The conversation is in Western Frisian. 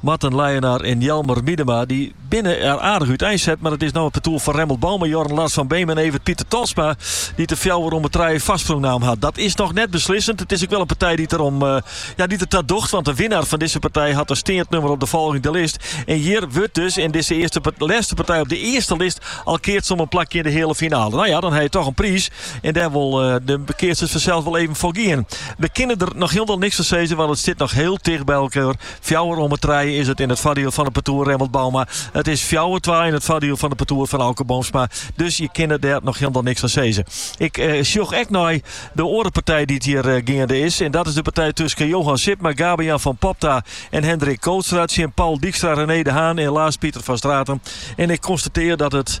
Marten Leijenaar en Jelmer Miedema dy binne der aardich útein set, mar it is no it partoer fan Remmelt Bouma, Jorn Lars van Beem en Evert Pieter Tolsma dy't de fjouwer om 'e trije foarsprong naam hat. Dat is noch net beslissend. It is ek wol in partij dy't der ta docht, want de winner fan dizze partij hat in steand nummer op de folgjende list en hjir wurdt dus yn dizze lêste partij op de earste list al keatsen om in plakje yn de heale finale. No ja, dan ha je toch in priis en dêr wol de keatsers fansels wol even foar gean. We kinne der noch hielendal niks fan sizze, want it stiet noch hiel ticht by elkoar. Fjouwer om 'e trije is it yn it foardiel fan de partoer Remmelt Bouma. It is fjouwer twa yn it foardiel fan de partoer fan Auke Boomsma. Dus je kinne dêr noch hielendal niks fan sizze. Ik sjoch ek nei de oare partij dy't hjir geande is. En dat is de partij tusken Johan Sipma, Gabe-Jan van Popta en Hendrik Kootstra tsjin Paul Dijkstra, René de Haan en Laas Pieter van Straten. En ik konstatear dat it.